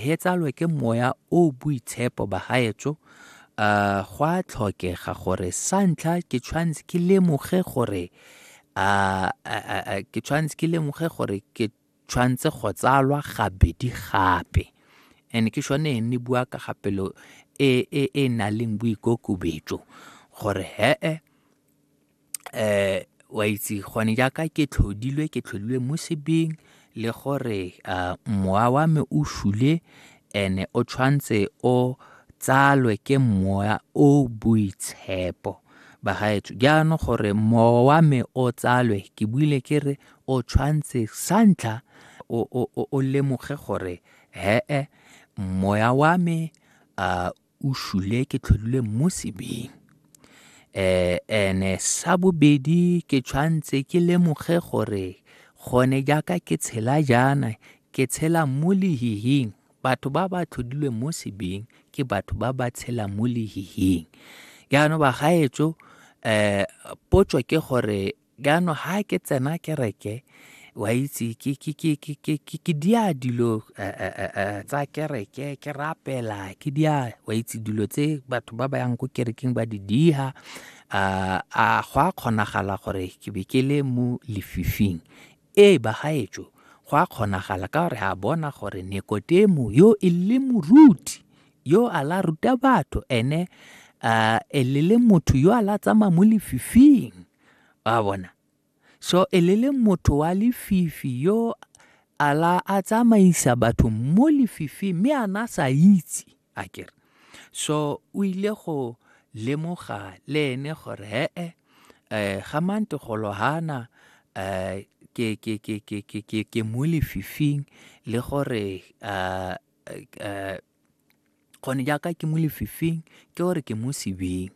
he tsalwe ke moya o boitshepo bagaetso uh, go a tlhokega gore sa ntlha ke tshwanetse ke lemoge gore uh, uh, ke tshwanetse ke lemoge gore ke tshwanetse go tsalwa gabedi gape and ke shone ne bua ka gapelo e e e na leng boikokobetso gore hee um wa itse gone jaaka ke tlhodilwe ke tlhodilwe mo sebeng le gore um mowa wa me o shule ene o tshwanetse o tsalwe ke moya o boitshepo bagaetsho jaanong gore mowa wa me o tsalwe ke buile ke re o tshwanetse sa ntlha o lemoge gore he-e moya wa me um o shule ke tlhodile mo sebeng eh ene sa bobedi ke tshwanetse ke lemoge gore gone jaaka ke tshela jaana ke tshela mo lehihing batho ba ba tlhodilweng mo sebeng ke batho ba ba tshela mo lehihing jaanong bagaetso um potso ke gore Jaanong ha ke tsena kereke wa itse ke dia dilo eh, eh, eh, tsa kereke ke rapela ke dia wa itse dilo tse batho ba ba yang ko kerekeng ba di diha a go a kgonagala gore ke be ke le mo lefifing ee bagaetso go a kgonagala ka gore a bona gore nekotemo yo e le moruti yo a la ruta batho ene um e le le motho yo a la tsamaya mo lefifing wa bona so e le le motho wa lefifi yo a la a tsamaisa batho mo lefifi mme a na sa itse a kere so o ile go lemoga le ene gore he-e um ga mantegolo gana um ke ke ke ke ke ke ke mo lefifing le gore um gone jaaka ke mo lefifing ke gore ke mo sebeng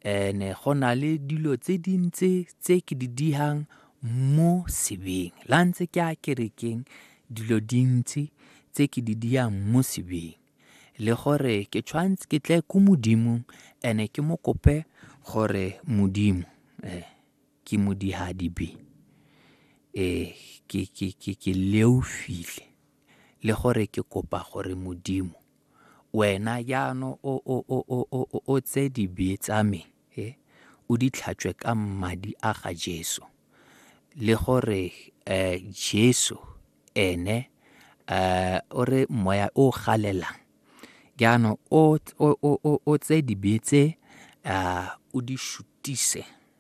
and-e go na le dilo tse dintsi tse ke di dihang mo sebeng. La ntse ke a kerekeng dilo dintsi tse ke di diyang mo sebeng le gore ke tshwanetse ke tle ko modimong and ke mo kope gore modimo eh, ke modihadibe eh, ke, ke, ke, ke leofile le gore ke kopa gore Modimo, wena jaanong o, o, o, o, o, o, o tse dibe tsa me he, o di tlhatswe ka madi a ga Jesu. Le gore eh, Jesu ene eh, o re moya o galelang jaanong o, o, o, o, o tse dibe tse ah, o di shutise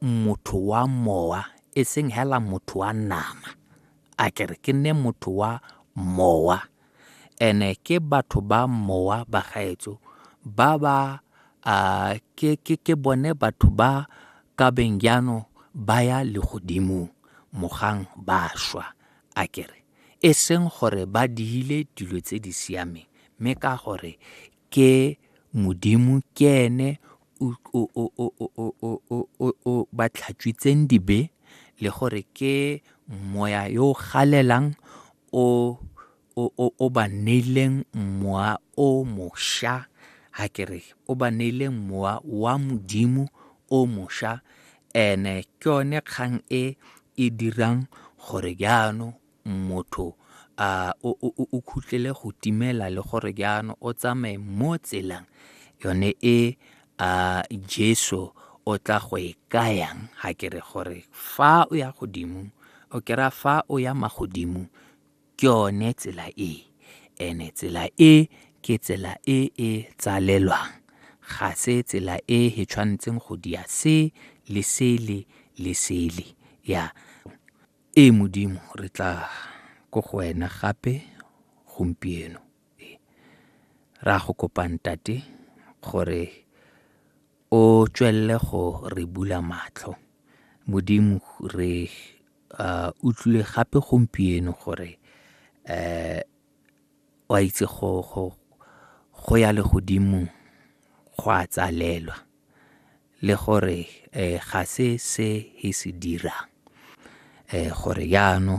motho wa mowa e seng hela motho wa nama a ke re ke nne motho wa mowa ene ke batho ba mowa ba gaetso ba ba uh, ke, ke, ke bone batho ba ka beng jaanong ba ya legodimong mogang ba shwa a kere e seng gore ba diile dilo tse di siameng mme ka gore ke Modimo ke ene o ba tlhatswitseng dibe le gore ke moya yo o galelang o ba neileng mowa o mošwa ga ke re o ba neileng mowa wa Modimo o mošwa and-e ke yone kgang e e dirang gore jaanong motho a o khutlele go timela le gore jaanong o tsamaye mo tselang yone e a jesu o tla go e kayang ga ke re gore fa o ya godimo o kry-a fa o ya magodimo ke yone tsela e ene tsela e ke tsela e e tsalelwang ga se tsela e e tshwanetseng go dia se le sele le sele ya Ee Modimo, re tla ko go wena gape gompieno. Re a go kopa ntate gore o tswelele go re bula matlho. Modimo re uh, utlwile gape gompieno gore um o a itse go ya le godimo go a tsalelwa le gore ga se se e se dirang gore jaanong.